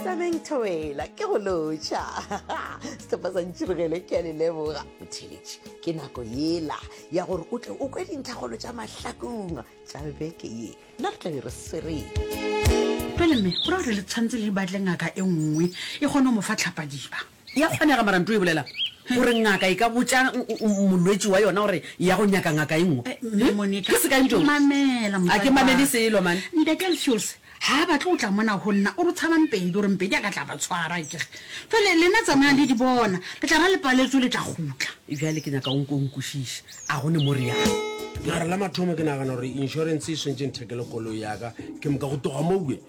tsameng thobela ke go lotšha setlhopha sa ntšhirogele ke a le leboga botheletše ke nako yela ya gore o tle o kwe dintlhagolo tša mahlakong tša beke ye nna re tlabe re swereng pele mme go ra gore le tshwanetse le di batle ngaka e nngwe e kgone go mo fa tlhapadiba E a kgonega, mara nto e bolela gore ngaka e ka botša molwetši wa yona gore e ya go nyaka ngaka e nngwe. Mme Monica, Ke sekae Ntšouse? mamela motswadi wa ka. A ke mamele selo, man. Ntate Alfiose ha a batle go tla mona go nna, o re o tshaba Mpedi, o re Mpedi a ka tla ba tshwara. Akere jwale lena tsamayang le di bona, le tla ba le paletso le tla gutla. Bjale ke nyaka o nko o nkwešiše, a go ne mo re yang? Mara la mathomo ke nagana gore insurance e swentše nthekele koloi ya ka, ke moka go tloga mowe.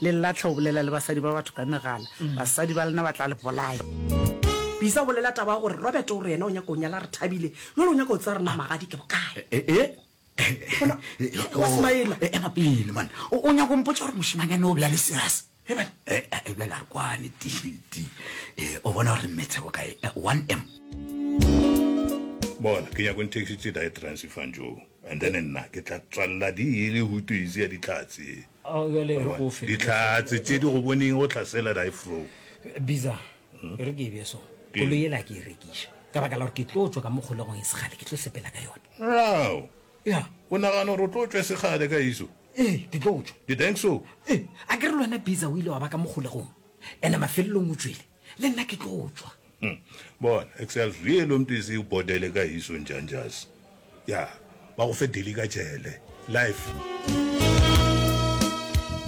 Le lahle go bolela le basadi ba batho ka megala. Basadi ba lena ba tla le bolaya. Bisa o bolela taba ya gore Robert o re yena o nyaka go nyala Rethabile, jwale o nyaka go tseba gore na magadi ke bokae. Bona, o a smile-a. Ema pele, man. O, o nyaka go mpotša gore mošemanyana o be a le serious? He, man. Eh, eh, ebilane a re kwane, Tildi. Eh, o bona gore mmetshe bokae? Eh, 1M. Bona, ke nyaka go nthekišitše diatrance fantšo, and then nna ke tla tswalela di e le hutu easy ya ditlhatse. Ao bjale re go fe. Dihlatse tše di go boneng go hlasela die fro. Biza, e re ke e bje so. Koloi yela a ke e rekiša. Ka baka la gore ke tlo tšwa ka mo kgolegong e segale, ke tlo sepela ka yona. Rao! Ya. O nagana gore o tlo tšwa e segale ka eso? Ee, ke tlo tšwa. You think so? Ee, a ke re le wena Biza o ile wa ba ka mo kgolegong, ene mafelelong o tšwele. le nna ke tlo tšwa Hm, bona, excel vee lo mpisi u bodele ka hiso njanjas. Ya, ba go fe deli ka jele. Life.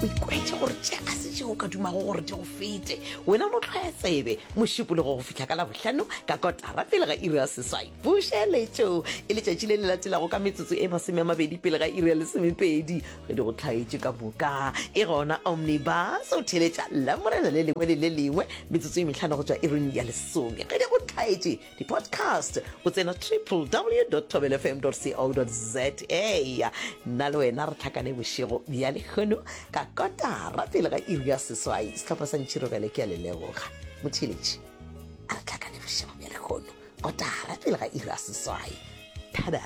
o ikwetše gore tše ga se tšeo o ka dumago gore di go fete wena no tlhwaya tsebe mošupologo go fihla ka labohlano ka kotara pele ga iri ya seswai bušeletšo e letšatši le le latelago ka metsotso e masome a mabedi pele ga iri ya lesomepedi Ge di go hlaetše ka moka, ke gona Omnibus o theletša Lamorena le lengwe le le lengwe metsotso e mehlano go tšwa ireng ya lesome. Ge di go hlaetše di-podcast, o tsena www thobelofm co za. Nna le wena re tlhakane bošego bja lekgono ka kotara pele ga iri ya seswai. Sehlopha sa ntšhiro bjale ke a le leboga motheletši. A re tlhakane bošego bja lekgono kotara pele ga iri ya seswai. Tada!